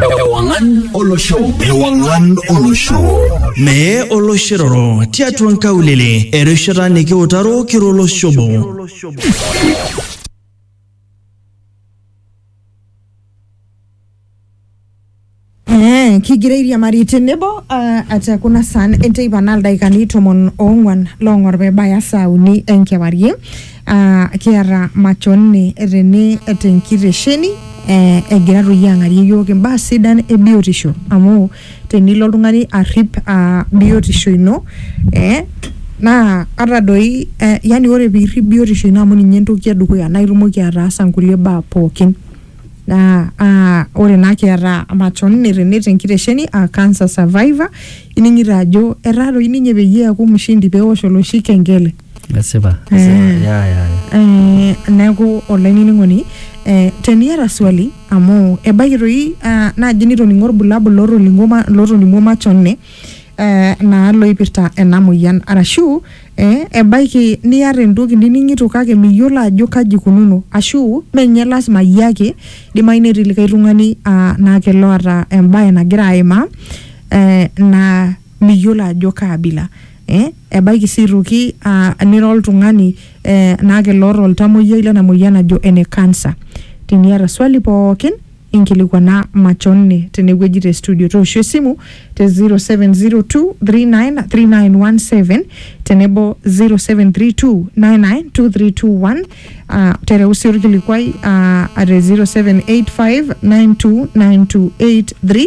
Ewangan Olosho. Ewangan Olosho. Mee oloshiroro tiatua nkaulele erishata nikiutaro kiro oloshobo. Eh, kigira airiamari tenebo ah, ata kuna saan enteipa naa ildaikani tomon oong'uan loong'or pebaya saa uni enkewarie Ah, kiata machoni tene tenkitesheni eh, egira toi ang'arie yiok imbaa sidan e biotisho amu tenilo oltung'ani arrip ah, biotisho ino eh, naa ata doi eh, yani ore piirrip biotisho ino amu ninye entoki edukuya naa itumoki ataasa nkulie baa pookin naa ah, ore naa kiata machoni tene tenkitesheni ah, cancer survivor ining'ito ajo etaa toi ninye peyie eeku mshindi pewosh oloshi kengele. esipa Eh. ya ya Eh, neeku olainining'oni eh, teniata swali amu ebaiki toi ah, naaji nitoning'o irbulabul lootoning'o ma- lootoning'o machone eh, naa loipirta ena moyian arashu eh, ebaiki niata entoki nining'ito kake miyiolo ajo kaji ikununo ashu menye lasima iyie ake idimayu netii likae tung'ani ah, naa kelo oata embae nagira aimaa eh, naa miyiolo ajo kaabila eh, Ebaiki sii aitoki uh, nira oltung'ani eh, naake loota oltamoyiai lena moyian najo ene cancer. Teniata swali pookin inkilikwana machonne tenewueji te studio. Tooshu esimu te 0702393917 tenebo 0732992321 uh, tereu sii orkilikuai uh, at 0785929283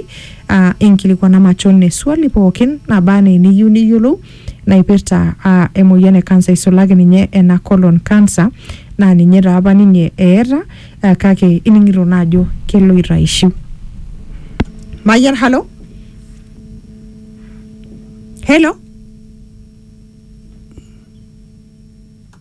uh, inkilikuana machon eswali pookin naba anaa eniyieu niyiolou naipirta uh, emoyian e kansa isulaki ninye ena colon cancer naa ninye taa apa ninye eeta uh, kake ining'ito naa ajo keloito aishiu mayian halo helo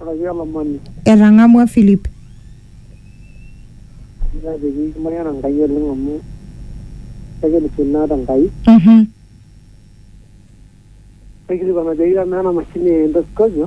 Araki olomoni. Etang'amua Philip. Ore pee kimayiana Enkai oleng amu kekirisio naa te Enkai. Naikilikuan ajoki amaa ena mashini e endoscopio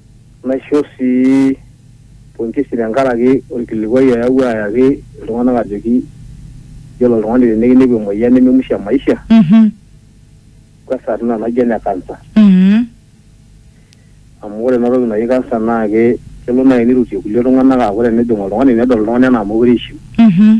Naisho sii pongesi tenkaraki olkilikuai oyawua ayaki iltung'anak ajoki yiolo oltung'ani tenikinepu emoyian neme musho e maisha Mhm. kwanza tina naji ene kansa. Mhm. Amu ore ena toki naji kansa naa ke kelo naaji neirutie kulie tung'anak aaku tenejing oltung'ani nedol oltung'ani anaa meekure eishiu. Mhm.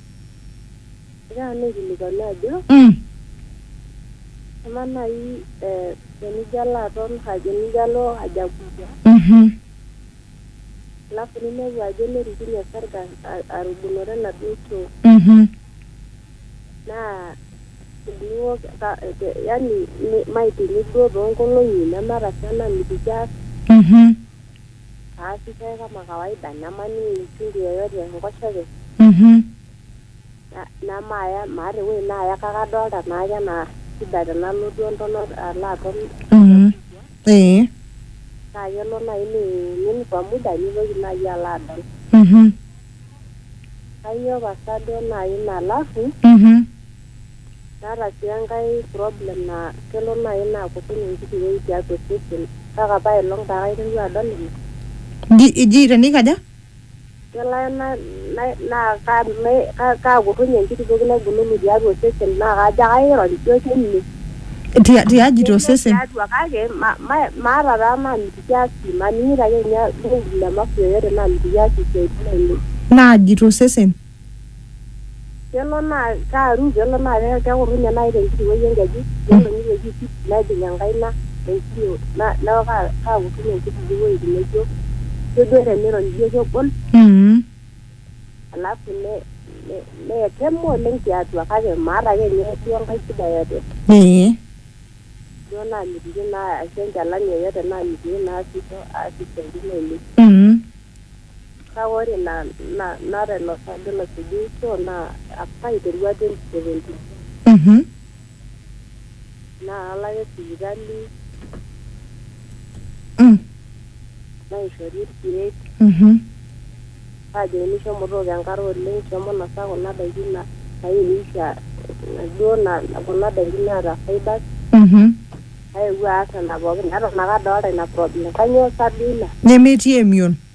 Egira nanu aikilikuanu ajo Mm. amaa naaji eh, tenijo alo aton haja tenijo alo haja kubwa Mhm. alafu ninepu ajo nerikinye osarge a- arubunore enaduo choo Mhm. naa teniwok ka- te- yani mi- maitini duo toonkolong'i neme arashu enamitiki aas Mhm. Aasi chai kama kawaida, nemaning uchungu yoyote enkoshoke, Mhm. na- nemaaya maata ewueji naaya kake adolta naake anaa shida tenalo duo entonat alo aton Mhm. Ee. naa kelo naaji niimin kwa muda nitoki naaji alo adol. Mhm. Kainyioo pasa duo naaji malafu Mhm. naata sii enkae problem naa kelo naaji naa kutik enkiti wueji tiatua osesen kake apa aelong taa kaiteru adol ina Ji, ji tenikaja? kelo ake na- na- naa ka- me- ka- kaakurrunye enkiti toki naibululu tiatua osesen naa kajo ake airony duo kene Tia- tiaji to Ketii sesen tiatua kake ma- ma- maata taa naamitiki aasie maning'ito ake ninye olkung'u le mafu yoyote naamitiki aasie isiaitin ainei naaji to sesen kelo naa kaaru kelo naa ke- kekurrunye naaji tenkiti wueji enkeju nelo nitoki aipit nejing enkaina enkiyo na- neeku ka- kaakurrunye inkutiti wueitin naijo kejo tenirony ijo kegol mm. alafu ne- ne- neetema oleng tiatua kake maata ake ninye duo enkae shida yote ee duo naamitiki naa ashu enchalan yoyote naamitiki naasisho aas isiaitin ainei mm. kake ore ina na- naata ilo saajo losujuisho naa apa aiterua 2017 Mhm. naa kalo ake sipitali Mm. naishori irkeek Mhm. naajokini shomo tooko enkare oleng shomo nosa kuna daiki na- nairisha duo na- kuna daiki naata fibers Mhm. naewuo aas nena pookin eton ake adolta ina problem kanyoo sa duo ina Nemetii emion.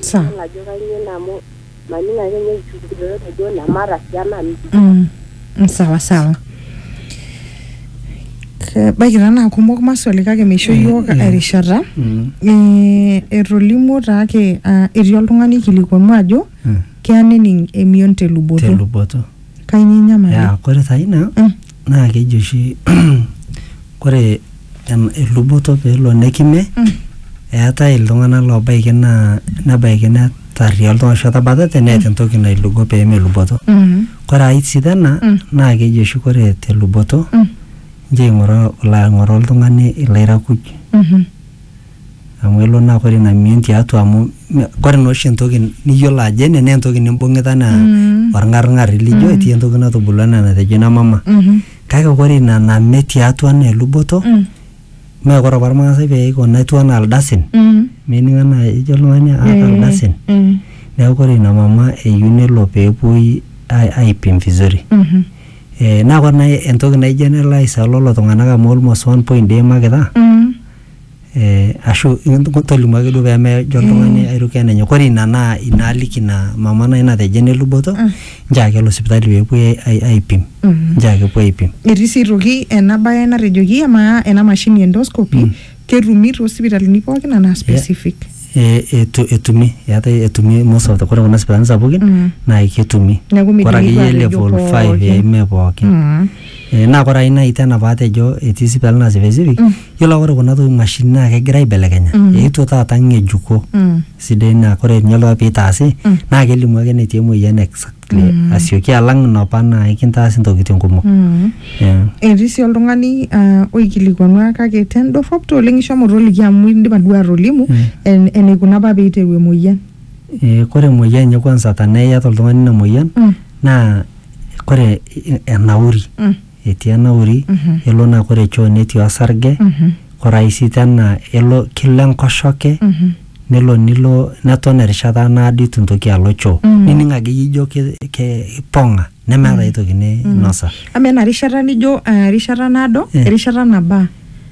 Sa. Idol ajo kainyoo ina amu maning ake ninye enchukunoto najo ina maata sii enanu. Mm. Mm, Sawa sawa. Kebaiki taa naa kumok maswali kake meisho iyiook erishata. Mm. Eh, etolimuo taake ah, etii oltung'ani aikilikuanu ajo Mm. keya nening emion te luboto. Teluboto. Kainyo enyamali? Ya, kore taa ina Mm. naa keji oshi kore em- eluboto peelo nekime Mm. eetae iltung'anak loobaiki naa nebaiki netarria oltung'ani ashu etabatate neeta entoki nailugo peemeluboto. Mm. Kore ai sii tena Mm. naa keji oshi kore te luboto Mm. nchoo eing'oraa ilo aing'oraa oltung'ani ilairakuj. Mhm. Amu elo naa kore ina mion tiatua amu me- kore naa oshi entoki niyiolo ajo ene naa entoki nimbung'ita anaa Mm. orng'arng'ari lijo etii entoki natubulua anaa enatejo ina mama. Mhm. Kake kore ina name tiatua anaa eluboto Mm. mee kore apa irmaasai pee eiko netiu anaa ildasin Mm. mening anaa ejo oltung'ani aata Eh, ildasin. eh. Neeku kore ina mama eyieu nelo pee epuoi ai- aipim vizuri. Mhm. Eh, naa kore nai entoki naijo ena elo aisaa lolo tung'anak amu almost 1.d eimakita. Mm. eh, ashu tolimu ake duo pemejo oltung'ani aitoki enenyok ore ina naa ina aliki ina mama nai natejo eneluboto nchoo ake elo sipitali peepuoi ai- ai- aipim nchoo ake epuo aipim etii sii aitoki ena bae natejoki amaa ena mashini endoscopy ketumi toosipitalini pookin anaa specific Eh, etu- etumi eetae etumi most of the kore kuna sipitalini sapukin Mm. naa ketumi Neeku midimi kore duo akeyie atejo level 5 pookin. eh, mee pookin Mm. Eh, naa kore ae nai tena paatejo etii sipitali naa specific mm. yiolo aa ore kuna toki mashini naa kegira aibelekenya mm. eetuo taata ng'ejuko mm. sidai naa kore ninye loo piitaasi mm. naa kelimu ake netii emoyian exactly mm. asioki alang inopa naa ikintaasi ntokitin kumok mm. yeah. etii sii oltung'ani uh, oikilikuanua kake tendorrop to oleng ishomo toliki amu indipa duo atolimu mm. en, eneikuna apa peiteru emoyian e, kore emoyian enye kwanza tanaa iyata oltung'ani ina moyian mm. naa kore enauri Mm. etii enauri Mhm. elo naa kore choo netii osarge Mhm. kore ai sii tena elo kelo enkoshoke Mhm. nelo nilo neton erishata naado itu intoki alo choo Mm. nining akeyie ijo ke- ke- ipong'a nemeeta ae toki ninosa Amaa ena rishata nijo eh, erishata naado, Eh. erishata nabaa.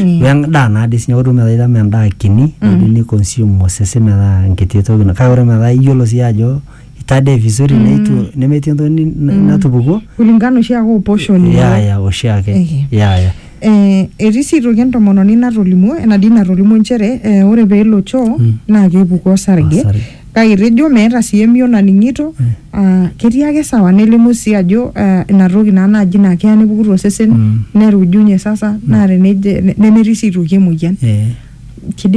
Mm. we endaa naa dii sinye ore metaa itama endaa kini mm. ni consume osesen metaa enkiti toki na- kake ore metaa iyiolo sii ajo itadee vizuri mm. neitu nemetii entoki ni- na- natupukuo kulingana oshi ake oposhoni ya ya oshiake Ehe. ya ya Eh, etii sii aitoki entomononi natolimuo enadii natolimuo nchere eh, ore peelo choo Mm. naa kepuku osarge Osarge. kake itejo meeta sii emion naning'ito aa ketii ake sawa nelimu sii ajo aa ina toki naa naaji naa keya nepuku tosesen Mm. nerujunye sasa naa teneje nemetii sii aitoki emoyian. Eh. Kidim